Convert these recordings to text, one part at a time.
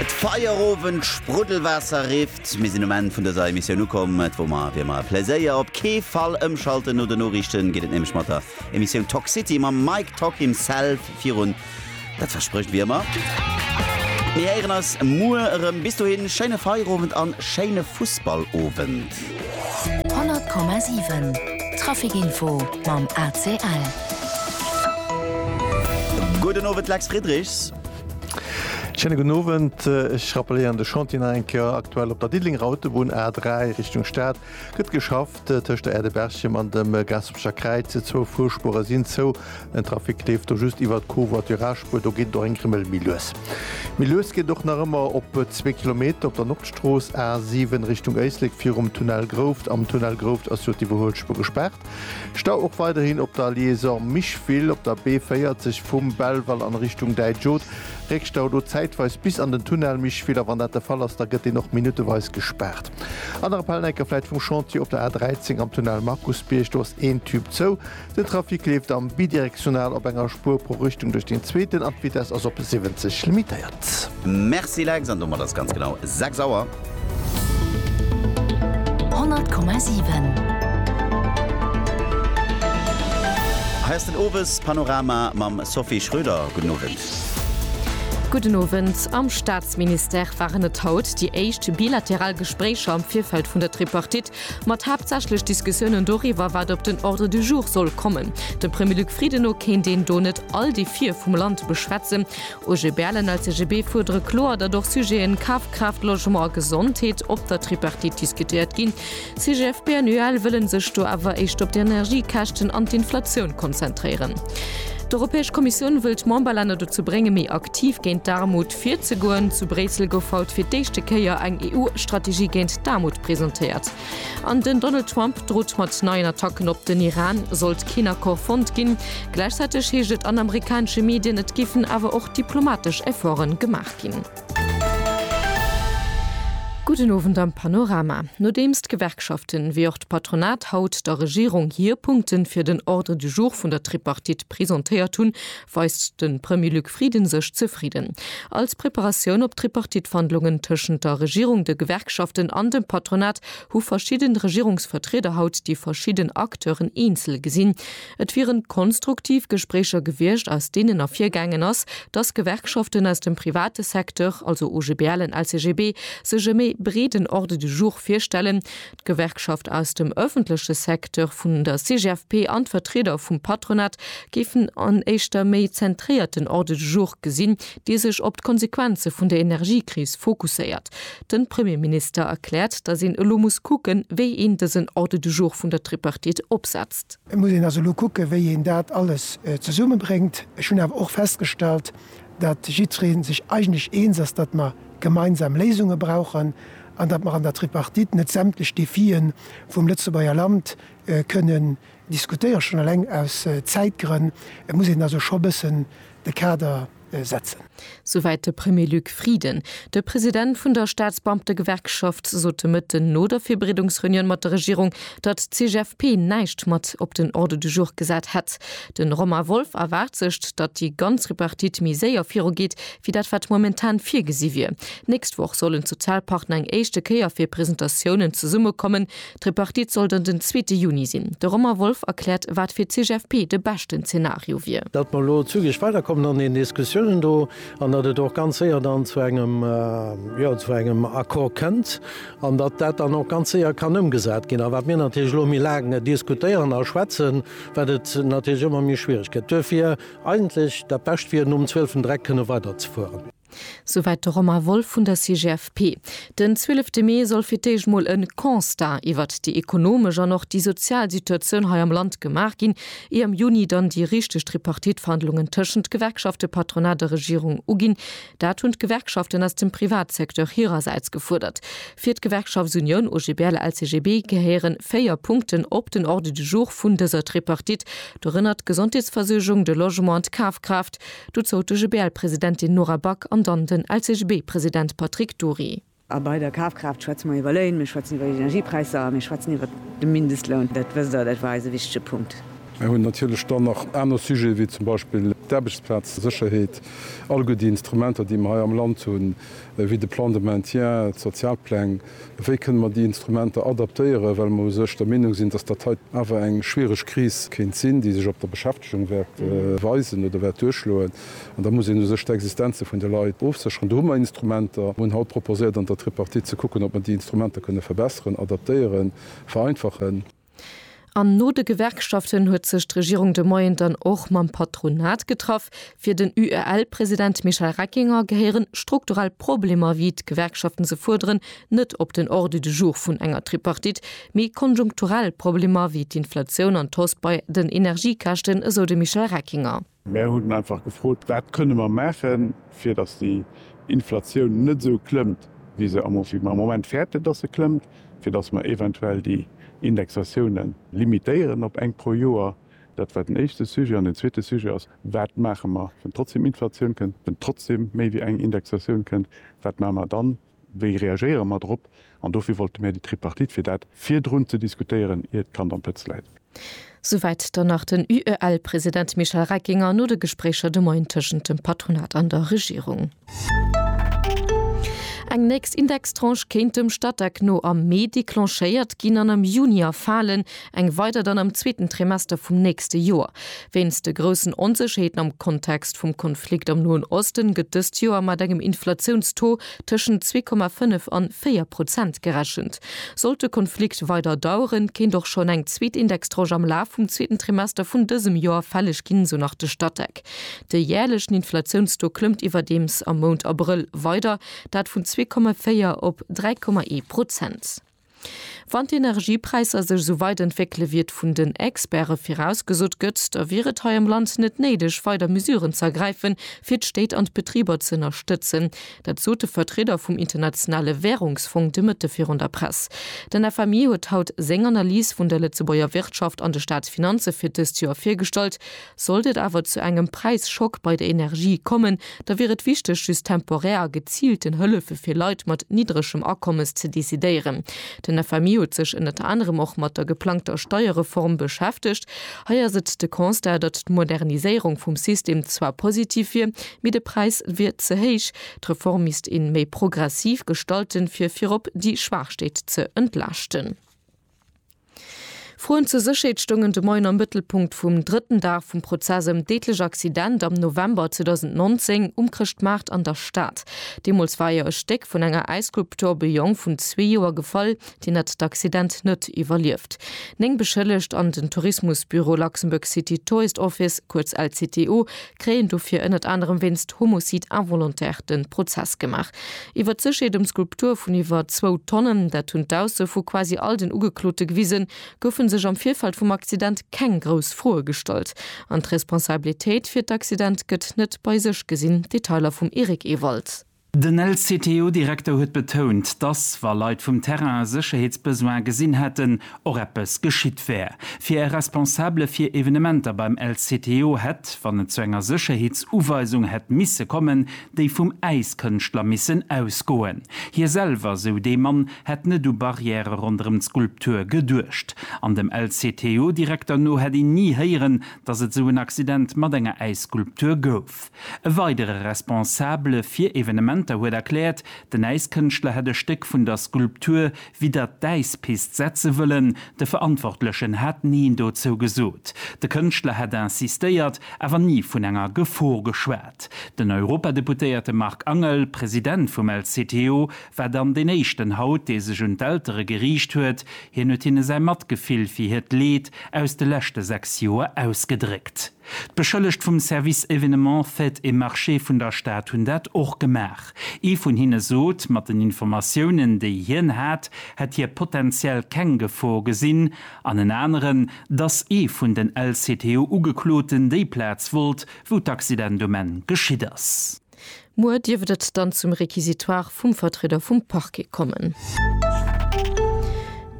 D'Feierowend Spruddelwaasser rifft. Mir sinn um Enn vun dëser Emissioun ukomm. Et wor mer wéi ëmmer e Pläséier. Op kee Fall ëmschalten, no de Noriichten geet et nämlech mat der Emissioun Talk City mam Mike Talk himself virun. Dat versprécht wéi ëmmer. Mir héieren eis muer erëm. Bis dohin, schéine Feierowend an schéine Fussballowend. Stad. 100,7 Traficinfo mam ACL. Gudden Owend Lex Friedrichs. Schéine gudden Owend. Ech rappelléieren de Chantier nach eng Kéier. Aktuell op der Diddelenger Autobunn A3 Richtung Stad gëtt geschafft tëscht der Aire de Berchem an dem Gaaspercher Kräiz. Zwou Fuerspuere sinn zou. Den Trafic leeft do just iwwert d'Covoiturage-Spuer, do geet et och eng Grimmel méi lues. Méi lues geet et och nach ëmmer op zwee Kilometer op der Nordstrooss A 7 Richtung Éislek virum Tunnel Grouft. Am Tunnel Grouft ass jo d'Iwwerhuelspuer gespaart. Stau och weiderhin op der Liaison Micheville op der B 40 vum Belval an Richtung Däitsch-Oth. Réckstau do zäitweis bis an den Tunnel Micheville a wann dat de Fall ass, da gëtt deen och minutteweis gespaart. Aner Appell, enker vläit vum Chantier op der A 13 am Tunnel Markusbierg, do ass een Tüb zou. Den Trafic leeft am Bidirektional op enger Spuer pro Richtung duerch deen zweeten an d'Vitess ass op 70 limitéiert. Merci Lex, an domat ass ganz genau 6 Auer. 100,7. Hei ass den Owes Panorama mam Sophie Schröder. Gudden Owend. Gudden Owend. Am Staatsministère waren et haut déi éischt bilateral Gespréicher am Virfeld vun der Tripartite Mat haaptsächlech Diskussiounen doriwwer, wat op den Ordre du jour soll kommen. Dem Premier Luc Frieden no kéint een do net all déi Vir vum Land beschwätzen. OGBL an LCGB fuerdere kloer, datt och Sujeten Kafkraaft, Logement a Gesondheet op der Tripartite diskutéiert ginn. CGFP an UEL wëlle sech do awer éischt op d'Energiekäschten an d'Inflatioun konzentréieren. D'Europäesch Kommissioun wëll d'Memberlänner dozou bréngen, méi aktiv géint d'Aarmut, Virzegoen. Zu Bréissel gouf haut fir d'éischte Kéier eng EU-Strategie géint d'Aarmut presentéiert. An den Donald Trump drot mat neien Attacken op den Iran, sollt keen Accord fonnt ginn. Gläichzäiteg heescht et an amerikanesche Medien, et géifen awer och diplomatesch Efforten gemaach ginn. Gudden Owend am Panorama. Nodeems d'Gewerkschaften wéi och d'Patronat haut der Regierung hir Punkte fir den Ordre du jour vun der Tripartite presentéiert hunn, weist de Premier Luc Frieden sech zefridden. Als Preparatioun op d'Tripartite-Wandlungen tëschent der Regierung, de Gewerkschaften an dem Patronat hu verschidden Regierungsvertrieder haut déi verschidden Acteuren eenzel gesinn. Et wieren konstruktiv Gespréicher gewiescht, aus deenen ervirgaangen ass, dass Gewerkschaften aus dem private Secteur, also OGBL en LCGB, sech e méi breeden Ordre du jour virstellen, D'Gewerkschaft aus dem ëffentleche Secteur vun der CGFP an d'Vertrieder vum Patronat géifen en éischter méi zentréierten Ordre du jour gesinn, dee sech op d'Konsequenze vun der Energiekris fokusséiert. De Premierminister erkläert, datt een elo muss kucken, wéi een dësen Ordre du jour vun der Tripartite opsetzt. Et muss een also elo kucken, wéi een dat alles zesummebréngt. Ech hunn awer och festgestallt, datt jiddweree sech eigentlech eens ass, datt mer gemeinsam Léisunge brauchen. an datt mer an der Tripartite net sämtlech Defie vum Lëtzebuerger Land kënnen diskutéieren, schonn eleng aus Zäitgrënn muss een also scho bëssen de Kader setzen. Souwäit de Premier Luc Frieden. De President vun der Staatsbeamtegewerkschaft sot de Mëtten no der Virbereedungsreunioun mat der Regierung, datt d'CGFP näischt mat op den Ordre du jour gesat hätt. De Romain Wolff erwaart sech, datt déi ganz Tripartite méi séier virugeet, wéi dat wat momentan virgesi wier. D'nächst Woch sollen d'Sozialpartner eng éischte Kéier fir Presentatiounen zesummekommen. D'Tripartite soll dann den zweete Juni sinn. De Romain Wolff erkläert, wat fir d'CGFP de beschten Zenario wier. Datt mer elo zügeg weiderkommen an den Diskussiounen do an datt et och ganz séier dann zu engem, jo, zu engem Accord kënnt an datt dat dann och ganz séier kann ëmgesat ginn. A wat mir natierlech elo méi laang diskutéieren a schwätzen, wat et natierlech ëmmer méi schwiereg gëtt. Duerfir. Eigentlech dat Bescht wier, nom zwielften Dreck kënne weider ze fueren. Souwäit de Romain Wolff vun der CGFP. Den zwielefte Mee soll fir d'éischt mol e Constat iwwert déi ekonomesch an och déi sozial Situatioun hei am Land gemaach ginn, ier am Juni dann déi richteg Tripartite-Verhandlungen tëschent Gewerkschafte, Patronat a Regierung uginn. Dat hunn d'Gewerkschaften aus dem Privatsecteur hirersäits gefuerdert. Fir d'Gewerkschaftsunioun OGBL-LCGB gehéiere véier Punkten op den Ordre du jour vun dëser Tripartite, dorënner d'Gesondheetsversuergung, de Logement an d'Kafkraaft. Dozou d'OGBL-Presidentin Nora Back an dann den LCGB-President Patrick Dury. A bei der Kafkraaft schwätze mer iwwer Léin, mir schwätzen iwwer Energiepräisser a mir schwätzen iwwer de Mindestloun. Dat wësst Der, dat war eis e wichtige Punkt. Mir hunn natierlech dann nach aner Sujete wéi zum Beispill d'Aarbechtsplazsécherheet, all gutt déi Instrumenter, déi mer hei am Land hunn, wéi de Plan de maintien, d'Sozialpläng. Wéi kënnen mer déi Instrumenter adaptéieren, well mer u sech der Meenung sinn, dass dat hei awer eng schwierig Kris kéint sinn, déi sech op der Beschäftigung wäert weisen oder wäert duerchschloen. An da muss een u sech d'Existenze vun de Leit ofsécheren. Do hu mer Instrumenter. Mer hunn haut proposéiert an der Tripartite ze kucken, ob mer déi Instrumenter kënne verbesseren, adaptéieren, vereinfachen. An no de Gewerkschaften huet sech d'Regierung de Moien dann och mam Patronat getraff. Fir den UEL-President Michel Reckinger gehéieren strukturell Problemer, wéi d'Gewerkschaften se fuerderen, net op den Ordre du jour vun enger Tripartite, mee konjunkturell Problemer wéi d'Inflatioun an d'Hausse bei den Energiekäschten, esou de Michel Reckinger. Mär hunn einfach gefrot, wat kënne mer maachen, fir datt déi Inflatioun net esou klëmmt, wéi se am Moment fäerten, datt se klëmmt, fir datt mer eventuell déi Indexatioune limitéieren op eng pro Joer. Dat war den éischte Sujet. An den zweete Sujet ass, Wat maache mer, wann trotzdeem Inflatioun kënnt, wann trotzdeem méi wéi eng Indexatioun kënnt, wat maache mer dann? Wéi reagéiere mer drop? An dofir wollte mär déi Tripartite, fir dat virdrun ze diskutéieren, ier d'Kand am Pëtz läit. Souwäit dann nach den UEL-President Michel Reckinger no de Gespréicher de Moien tëschent dem Patronat an der Regierung. Eng nächst Indextranche kéint dem Statec no am Mee declenchéiert ginn an am Juni erfalen. eng weider dann am zweeten Trimester vum nächste Joer. Wéinst de groussen Onsécherheeten am Kontext vum Konflikt am Noen Osten gëtt dëst Joer mat engem Inflatiounstaux tëschent zwee Komma fënnef an véier Prozent gerechent. Sollt de Konflikt weider daueren, kéint och schonn eng zweet Indextranche am Laf vum zweeten Trimester vun dësem Joer fälleg ginn, esou nach de Statec. De jäerlechen Inflatiounstaux klëmmt iwwerdeems am Mount Abrëll weider, dat vun zwee Komma véier op dräi Komma ee Prozent. Wann d'Energiepräisser sech esou weit entwéckele wéi et vun den Experte virausgesot gëtt, da wier et hei am Land net néideg weider Mesuren ze ergräifen, fir d'Stéit an d'Betriber ze ënnerstëtzen. Dat sot de Vertrieder vum Internationale Währungsfong de Mëtte virun der Press. Den FMI huet haut seng Analys vun der Lëtzebuerger Wirtschaft an de Staatsfinanze fir dëst Joer virgestallt. Sollt et awer zu engem Präisschock bei der Energie kommen, da wier et wichteg, just temporär a geziilten Hëllefe fir Leit mat niddregem Akommes ze decidéieren. Den FMI huet sech ënnert anerem och mat der geplangter Steierreform beschäftegt. Hei ass et de Constat, datt d'Moderniséierung vum System zwar positiv wier, mee de Präis wier ze héich. D'Reform misst een méi progressiv gestalten, fir virop déi Schwaach Stéit ze entlaaschten. Froen zur Sécherheet stoungen de Moien am Mëttelpunkt vum drëtten Dag vum Prozess ëm d'deedlech Accident am November 2019 um Chrëschtmaart an der Stad. Deemools war jo e Stéck vun enger Äisskulptur op e Jong vun zwee Joer gefall, deen hat d'Accident net iwwerlieft. Néng Beschëllegt an den Tourismusbüro Luxembourg City Tourist Office, kuerz LCTO, kréien dofir ënnert anerem wéinst Homicide involontaire de Prozess gemaach. Iwwert d'Sécherheet ëm d'Skulptur vun iwwer zwou Tonnen, dat hunn d'Ausso vu quasi all den Ugeklote gewisen, goufe sech am Virfeld vum Accident keng grouss Froe gestallt. An d'Responsabilitéit fir d'Accident gëtt net bei sech gesinn. Detailer vum Eric Ewald. Den LCTO-Direkter huet betount, dass, wa Leit vum Terrain e Sécherheetsbesoin gesinn hätten, och eppes geschitt wär. Fir e Responsabele fir Evenementer beim LCTO hätt, wann et zu enger Sécherheetsuweisung hätt misse kommen, déi vum Äiskënschtler missen ausgoen. Hie selwer, sou dee Mann, hätt net u Barrièrë ronderëm d'Skulptur geduecht. An dem LCTO-Direkter no hätt een ni héieren, dass et esou en Accident mat enger Äisskulptur gouf. Kopf. E weidere Responsabele fir Evenementer huet erkläert, den Äiskënschtler hätt e Stéck vun der Skulptur widdert d'Äispist setze wëllen. De Verantwortlechen hat Neen dozou gesot. De Kënschtler hätt insistéiert, awer ni vun enger Gefor geschwat. Den Europadeputéierte Marc Angel, President vum LCTO, war dann deen éischten haut, dee sech un d'Eltere geriicht huet. Hien huet hinne säi Matgefill fir hiert Leed aus de leschte 6 Joer ausgedréckt. D'Beschëllegt vum Service Événements, Fêtes et Marchés vun der Stad hunn dat och gemaach. Ee vun hinne sot, mat den Informatiounen, déi hien hat, hätt hie potenziell keng Gefor gesinn, an en aneren, dass ee vun den LCTU-Ugekloten déi Plaz wollt, wou d'Accidentument geschitt ass. Muer dierft et dann zum Réquisitoire vum Vertrieder vum Parquet kommen.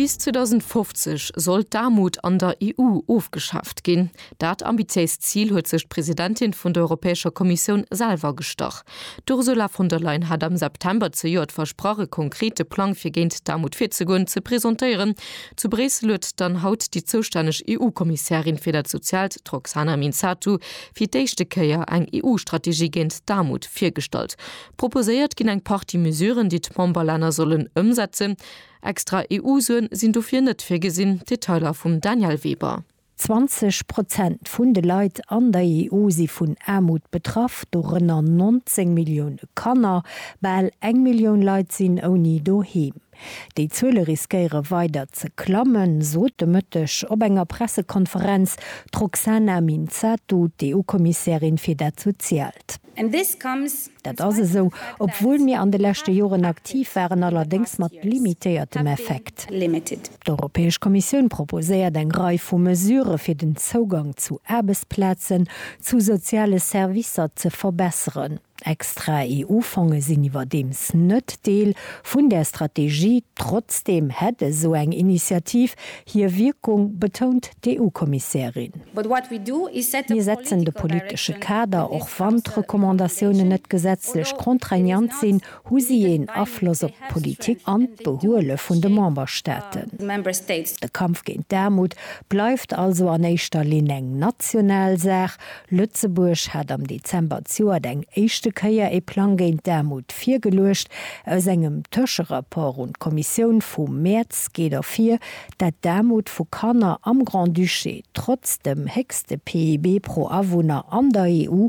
Bis 2050 soll d'Aarmut an der EU ofgeschaaft ginn. Dat ambitiéist Zil huet sech d'Presidentin vun der Europäescher Kommissioun selwer gestach. D'Ursula von der Leyen hat am September zejoert versprach, e konkrete Plang fir géint d'Aarmut virzegoen, ze presentéieren. Zu Bréissel huet dann haut déi zoustänneg EU-Kommissärin fir dat Soziaalt, d'Roxana Minzatu, fir d'éischte Kéier eng EU-Strategie géint d'Aarmut virgestallt. Proposéiert ginn eng Partie Mesuren, déi d'Memberlänner sollen ëmsetzen. Extra EU-Suen sinn dofir net virgesinn. Detailer vum Danièle Weber. 20 Prozent vun de Leit an der EU si vun Aarmut betraff, dorënner 19 Millioune Kanner. Bal eng Millioun Leit sinn ouni Doheem. Déi Zuele riskéiere weider ze klammen, sot de Mëtteg op enger Pressekonferenz d'Roxana Minzatu, d'EU-Kommissärin fir dat Soziaalt. Dat ass esou, obwuel mir an de leschte Joren aktiv waren, allerdéngs mat limitéiertem Effekt. D'Europäesch Kommissioun proposéiert eng Rei vu Mesurë fir den Zougang zu Aarbechtsplazen, zu soziale Servicer ze verbesseren. Extra EU-Fonge sinn iwwerdeems net Deel vun där Strategie. Trotzdeem hätt esou eng Initiativ hir Wierkung, betount d'EU-Kommissärin. Mir setzen de politesche Kader, och wann d'Recommandatiounen net gesetzlech contraignant sinn. Hu si een Afloss op d'Politik an d'Behuele vun de Memberstaaten? De Kampf géint d'Aarmut bleift also an éischter Linn eng national Saach. Lëtzebuerg hat am Dezember d'Joert eng éischte Kéier ee Plang géint d'Aarmut virgeluecht. Aus engem Tëscherapport un d'Kommissioun vum Mäerz geet ervir, dat d'Aarmut vu Kanner am Grand-Duché trotz dem héchste PIB pro Awunner an der EU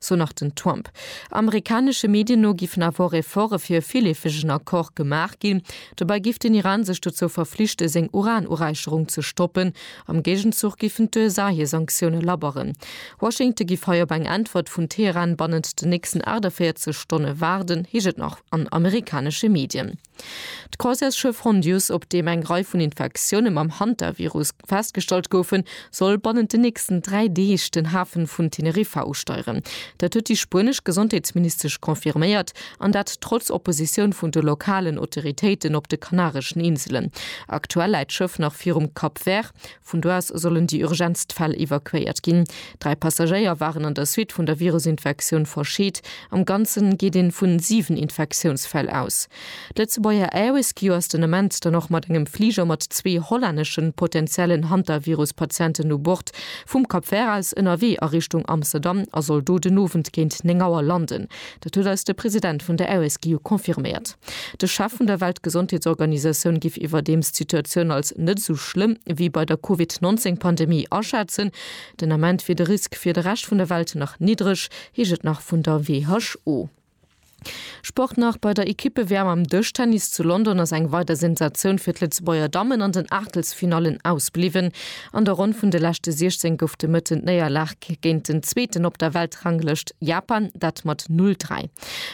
sou nach den Trump. Amerikanesche Medien no giffen awer och Efforte fir e villeefegen Accord gemaach ginn. Dobäi giff den Iran sech dozou verflichten, seng Uran-Uräicherung ze stoppen. Am Géigenzuch giffen d'USA hir Sanktioune labberen. Washington giff hei op eng Äntwert vun Teheran bannent den nächsten 48 Stonne waarden, heescht et nach an amerikanesche Medien. D'Croisièreschiff Hondius, op deem eng Rei vun Infektioune mam Hantavirus festgestallt goufen, soll bannent den nächsten dräi Deeg den Hafe vun Teneriffa usteieren. Dat huet déi spuenesch Gesondheetsministesch confirméiert, an dat trotz Oppositioun vun de lokalen Autoritéiten op de Kanareschen Inselen. Aktuell läit d'Schëff nach virum Cap Vert. Vun do aus sollen déi urgentst Fäll evakuéiert ginn. Dräi Passagéier waren an der Suite vun der Virusinfektioun verscheet. Am Ganzen geet een vu siwen Infektiounsfäll aus. D'Lëtzebuerger Air-Rescue ass den Ament dann och mat engem Fliger mat zwee hollänneschen potenziellen Hantavirus-Patienten u Bord vum Cap Vert aus ënnerwee a Richtung Amsterdam a soll do den Owend géint 9 Auer landen. Dat huet eis de President vun der RSGU confirméiert. De Chef vun der Weltgesondheetsorganisatioun giff iwwerdeems d'Situatioun als net esou schlëmm wéi bei der Covid 19 Pandemie aschätzen. Den Ament wier de Risk fir de Rescht vun der Welt nach niddreg, heescht et nach vun der WHO. Sport nach, Bei der Ekippe-WM am Dëschtennis zu London ass eng weider Sensatioun fir d'Lëtzebuerger Dammen an den Aachtelsfinallen ausbliwwen. An der Ronn vun de leschte 16 gouf de Mëtten d'Néierlag géint den Zweeten op der Weltranglëscht, Japan, dat mat 'Null, Dräi'.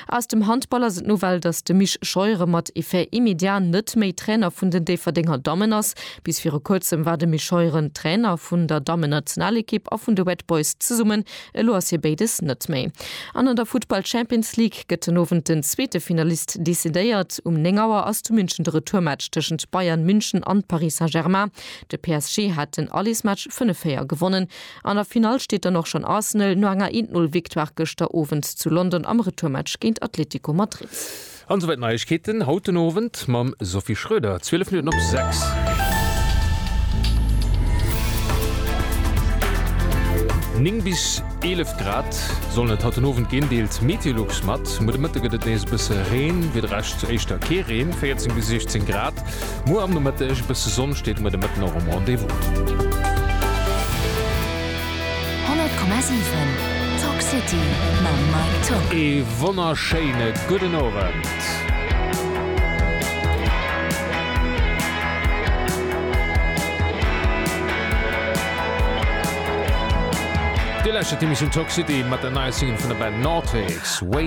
Aus dem Handball ass et d'Nouvelle, datt de Mich Scheuren mat Effet immédiat net méi Trainer vun den Déifferdenger Dammen ass. Bis viru kuerzem war de Mich Scheuren Trainer vun der Dammennationalekipp a vun de Red Boys zesummen. Elo ass hie béides net méi. An an der Futtball Champions League gëtt den Owend den zweete Finalist decidéiert. Um 9 Auer ass zu München de Retourmatch tëschent Bayern München an Paris Saint-Germain. De PSG hat den Allesmatch 5-4 gewonnen. An der Finall steet dann och schonn Arsenal no enger 1 Null Victoire gëschter Owend zu London am Retourmatch géint Atletico Madrid. An souwäit d'Neiegkeeten haut den Owend mam Sophie Schröder, 12 Minutten op 6. Néng bis 11 Grad sollen et haut den Owend ginn, deelt Meteolux mat. Muer de Mëtte gëtt et nees e bësse Reen, fir de Rescht zu Éischter kee Reen, 14 bis 16 Grad. Muer am Nomëtteg e bësse Sonn steet muer de Mëtten och um Rendez-vous. 100,7 Talk City mam Mike Tuck. Ee wonnerschéine gudden Owend. Dir lauschtert d'Emissioun Talk City mat der neier Single vun der Band Nortix, Way